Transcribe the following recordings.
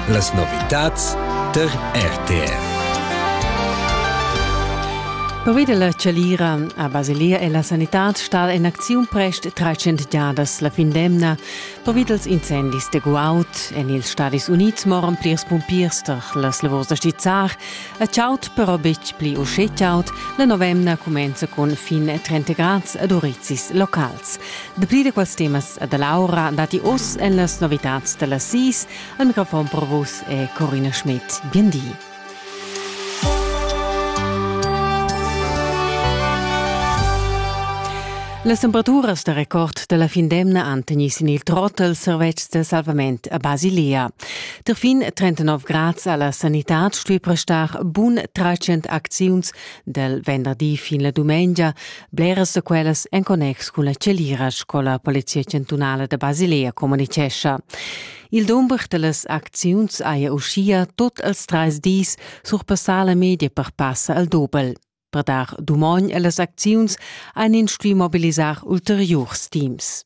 Las novitads tar RTR. Pervida la Chalira a Basilia e la sanitad stat en acziun prest 300 giadas la fin d'emna pervida els incendis de guaud. En ils Stadis Unids moran plirs pumpiers tar las lavurs da stizzar. A chaud però betg pli uschè chaud. La novemna cumenza cun fin 30 grads ad urizis locals. Dapli da quels temas e da l'aura datti oz en las novitads da las sis. Al microfon per vus è Corina Schmidt. Bien di. Las temperaturas da record da la fin d'emna han tegnì sin il trot als servetschs da salvament a Basilea. Der fin 39 grads a la sanitad stuì prestar bun 300 acziuns dal venderdi fin la dumengia, Bleras da quellas en connex cun la celira sco la Polizia chantunala da Basilea communicescha. Il dumber dallas acziuns haja uschia tot als treis dis surpassà la media per passa al dobel. Per dar dumogn allas acziuns ein ins stuì mobilisar ulteriurs teams.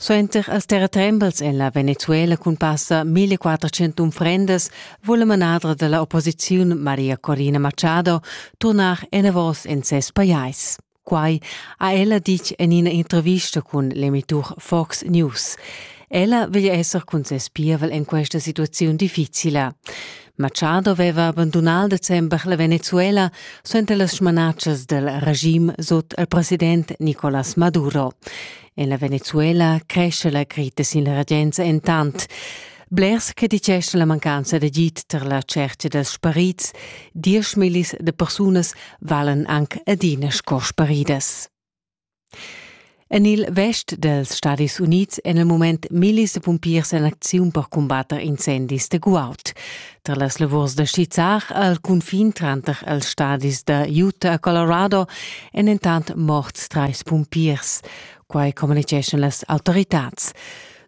Suenter as terratrembels en la Venezuela cun passa 1400 unfrendas vul la manadra da la opposiziun Maria Corina Machado turnar enavos en ses pajais. Quai ha ella ditg en ina intervista cun l'emitur Fox News. Ella veglia esser cun ses pievel en questa situaziun difficila. Machado veva abandunà il december la Venezuela suenter las smanatschas dal regim sut il president Nicolás Maduro. En la Venezuela cresce la crita sin la regenza entant. Blers che dicesch la mancanza d'agid tar la cerca dels sparits, diesch millis de persunas valen anc adina sco sparidas. En il vest dals Stadis Unids èn il mument millis da pumpiers en acziun per cumbatter incendis da guaud. Tra las lavurs da skizzar al cunfin tranter els stadis da Utah e Colorado èn entant morts trais pumpiers. Quai communitgeschan las autoritads.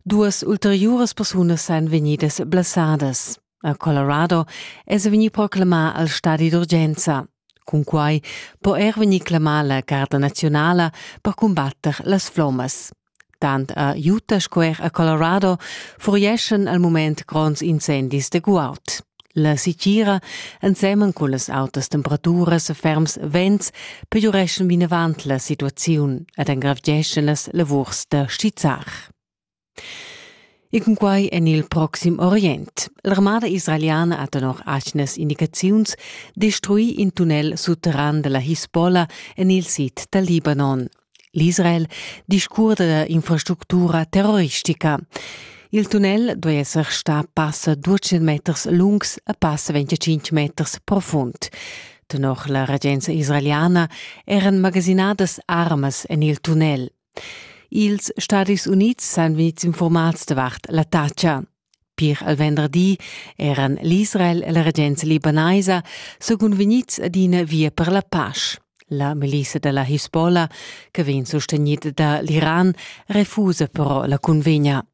Duas ulteriuras persunas èn vegnidas blessadas. A Colorado es vegni proclamà al stadi d'urgenza. Cunquai po er vegnir clamà la Carta nazionala per cumbatter las flommas. Tant a Utah sco er a Colorado furieschan al mument gronds incendis de guaud. La sitgira, ensemen con las autas temperaturas e ferms vents, pegiureschan vinavant la situaziun ed engravgeschan las lavurs da stizzar. E cunquai en il Proxim Orient. L'armada israeliana ha tenor atgnas indicaziuns destruì in tunnel sutterran da la Hisbollah en il sid dal Libanon. L'Israel discurda da infrastructura terroristica. Il tunnel duai esser stà passa 200 meters lungs e passa 25 meters profund. Tenor la regenza israeliana eran magasinadas armas en il tunnel. Ils Stadis Unids san vegnids infurmads davart l'attacca. Pir al venderdi eran l'Israel e la regenza libanaisa secund vegnids ad ina via per la pasch. La milisa da la Hisbollah, che vegn sostegnida da l'Iran, refusa però la cunvegna.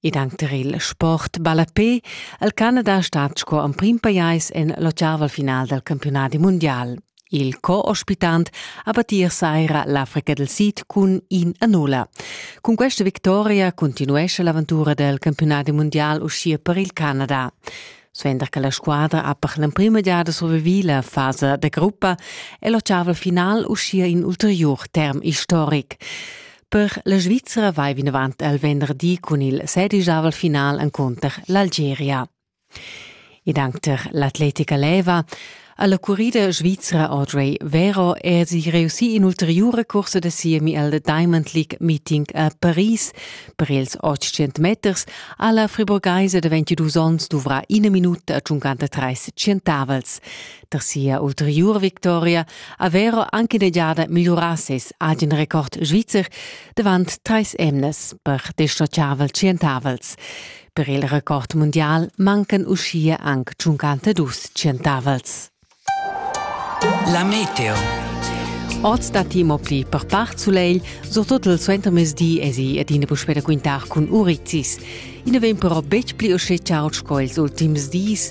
Ed anc tar il sport ballapé al Canada stat sco emprim pajais en l'ottaval final dal campiunadi mundial. Il co-ospitant ha battir saira l'Africa del Sid cun in a nulla. Cun questa victoria continuescha l'aventura del campiunadi mundial uschia per il Canada. Suenter che la squadra ha per l'emprima giada survivì la fasa da gruppa è l'ottaval final uschia in ulterior term istoric. Per la Svizra vai vinavant al venderdi cun il sedisavel final encunter l'Algeria. Ed anche per l'atletica leva alla currida svizra Audrey Vero è sie reussì in ulteriore corsa da siemi al Diamond League Meeting a Paris. Per ils 800 meters alla friburgesa da 22 onns dovrà ina minuta a 53 centavels. da sia ulteriura victoria aveva anche negiada migliurà ses agen record svizzer davant trais emnas per dischargiavel tschientavels. Per il record mundial mancan uschia anc 52 tschientavels. La meteo. Oz da timo pli per part sulegl, surtut il suentermezdi esi ed ina puspè da quintar cun Urizis. I na vegn però betg pli uschè chaud sco ils ultims dis.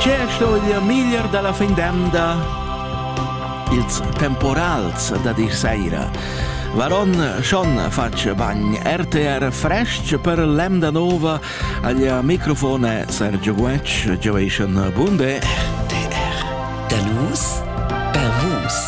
Che sto dir miglier dalla fin d'emda? Ils temporals da dir saira. Varon schon fatg bagn RTR frestg per l'emda nova agl microfone Sergio Guetsch, Joation Bunde. RTR. Da nus, per vus.